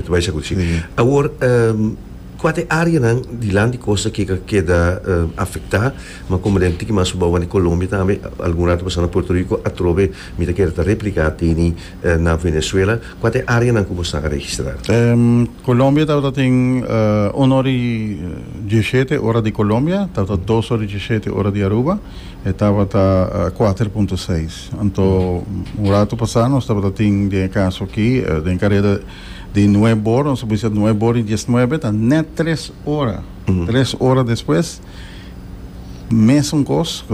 Ta bai sa cu si. Awor, cua ta e areanan di land di costa ke ka keda afecta? Ma como den tiki mas bounan di Colombia tambe, algun rato pasando na Puerto Rico, atrobe mi ta keda ta replica teni na Venezuela, cua ta e areanan cu nos taha registra? Colombia tabata tin uno ori dieschete ora di Colombia, tabata dos ori dieschete ora di Aruba, e tabata cuater punto seis. Anto un rato pasá nos tabata tin den e kaso akí den kareda di Nueb Bor, nos a bisa Nueb Bor i Dies Nuebe, ta nèt tres ora, tres ora despues mesun kos,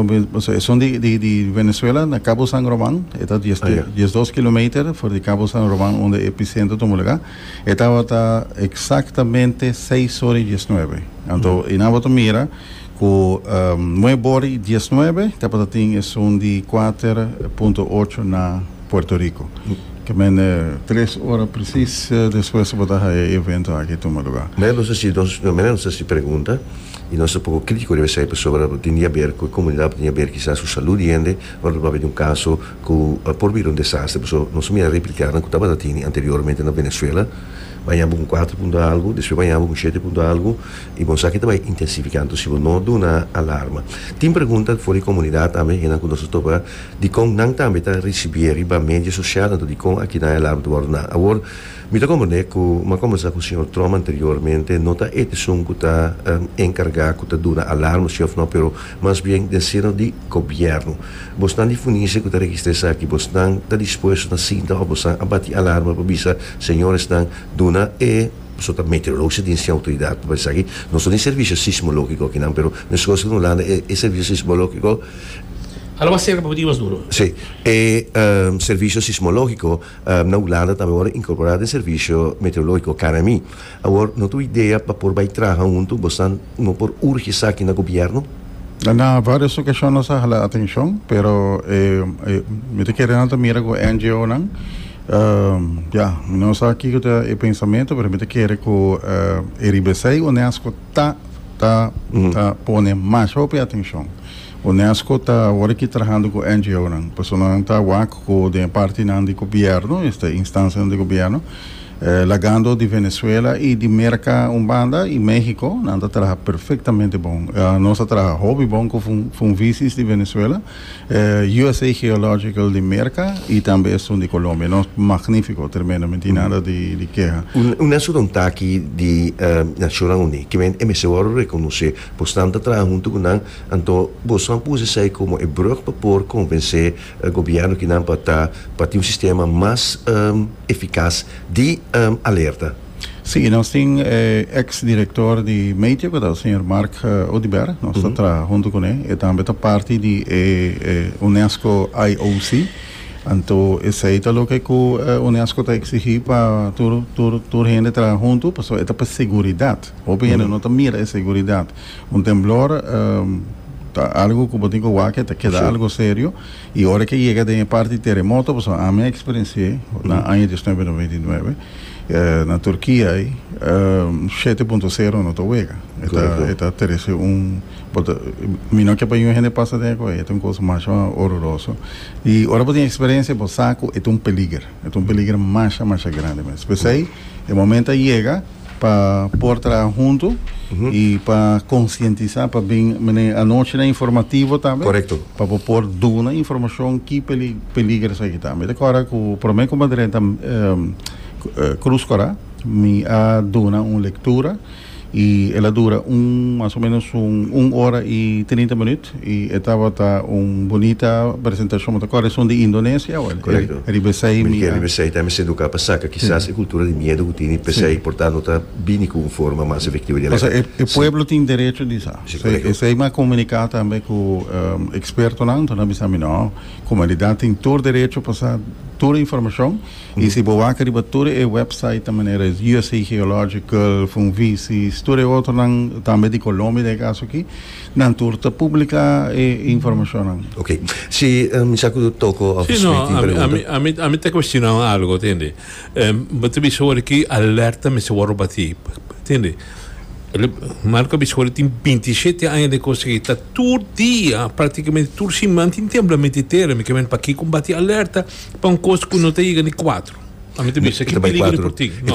esun di di di Venezuela na Cabo San Roman, e ta dies tre dies dos kilometer for di Cabo San Roman unda e epicentro ta mulegá, e tabata eksaktamente seis ora i dies nuebe. Anto i nan tabata mira Ku nue bori diesnuebe tabata tin esun di kuater punto ocho na Puerto Riko. Kemente. Tres ora presis despues tabata haña e evento aki tuma luga. Manera nos ta si nos, manera nos ta si pregunta i nos ta poko kritiko riba esei pasobra tabata tin di haber ku e komunidat tabata tin di haber kisas su salú di hende ora tabata haber un kaso ku por bira un desaster pasobra nos ta mira repliká nan ku tabata tini anteriormente na Venezuela baña bo ku un kuater punto algu despues baña bo ku un shete punto algu I bon saki ta bai intensifikando si bo no duna alarma. Tin pregunta for di komunidat tambe, hennan ku nos a topa dikon nan tambe ta risibié riba media sosial, anto dikon aki nan e alarma ta wòrdu duna. Awor, mi ta komprendé ku mi a komensá ku señor Trump anteriormente, no ta e esun ku ta enkargá ku ta duna alarma si òf no, pero mas bien den seno di gobièrnu. Bosnan di Funise ku ta registrá esaki, bosnan ta dispuesto ta sinta òf bosan a bati alarma pa bisa señoresnan duna e. Paso ta meteorologista tin sin autoridad pa bisa aki. Nos no tin servicio sismologico aki nan pero nos escoge si Holanda tin e servicio sismologico. Hala mas cerca pa boti mas duro. Si. E servicio sismologico na Holanda tambe worde incorpora den servicio meteorologico, KNMI. Awor no ta un idea pa por bay traha hunto? Bo sa no por urge esaki na gobierno? Na varios ocasion nos a hala atencion pero mi ta kere nan ta mira cu e NGO nan. Ya, mi no sa kiko ta e pensamentu, pero mi ta kere ku e riba esei Unesco ta ta ta pone mas hopi atenshon. Unesco ta awor aki trahando ku NGOnan, personanan ta wak ku den e partinan di gobièrnu, este instansianan di gobièrnu, lagando di Venezuela i di Merka un banda i México, nan ta traha perfektamente bon. Nos a traha hopi bon ku funvisis di Venezuela. USA Geological di Merca y tambe esun di Colombia. No, magnifico, tremendo, mi tin nada di keha. Un esun ta un taki di Nacionnan Uní ke men e mester wòrdu rekonosé. Bo snan ta traha huntu ku nan, anto bo stan por usa esei komo e brùg pa por konvensé gobièrnu kinan pa ta pa tin un sistema mas efikas di alerta. Sí, y nos tin e ex director di Meteo, que ta el señor Mark uh, Oduber, nos ta trabaja junto con él, e tambe ta parte di e, e UNESCO IOC, anto esei ta loke ku eh, UNESCO ta exigí pa tur, tur, tur hende trabaja junto, paso e ta pa seguridad. Hopi hende no ta mira e seguridad. Un temblor eh, ta algo ku bo tin ku wak, e ta keda Sí. algo serio, I ora ke yega den e parti teremoto pasobra ami a eksperensi'é na aña diosnuebe i nobenta i nuebe na Turkia ei shete punto sero no ta wega e ta e ta terese un bo ta mi no ke pa yuen hende pasa den akoba ei e ta un kos masha ororoso i ora bo tin eksperensia bo sa ku e ta un peliger e ta un peliger masha masha grandi mes p'esei e momento a yega. Pa por traha huntu y pa concientisa pa bin mene anochi na informativo tambe. Correcto. Pa bo por duna informacion ki peligro esaki ta. Mi ta cora cu prome cu mi a drenta Cruz Cora mi a duna un lectura y el a dura un mas o menos un ora y trinta minut. Y e tabata un bunita presentacion, bo ta kòrda esun di Indonesia o Correcto. e riba esei mi Miheri a. riba esei ta hemos educa pa saca kisas e cultura di miedo cu tini pesei por tanto ta bini cu un forma mas efectivo di Pasobra alerta. e pueblo tin derecho di sa. Si, correcto. Esei mi a comunica tambe cu expertonan, entonces nan bisa mi no, comunidad tin tur derecho pa sa tur informacion y si bo wak riba tur e website ta manera usa Geological, Funvisis, tur e otronan tambe di Colombia den e caso aki, Nan tur ta publica e informacionnan. Ok. Si mi sa cu Toko of the Street tin pregunta. Si, no. A mi ta cuestiona un algo, tende. Bo ta bisa worde ki alerta mester worde bati, tende. Marco a bisa worde tin binti i shete aña den Costa Rica, ta tur dia, practicamente tur siman tin temblamiento di tera. Mi kier paki con bati alerta pa un cos cu no ta yega ni cuatro. A mi ta bisa, ki peligro por tin? No.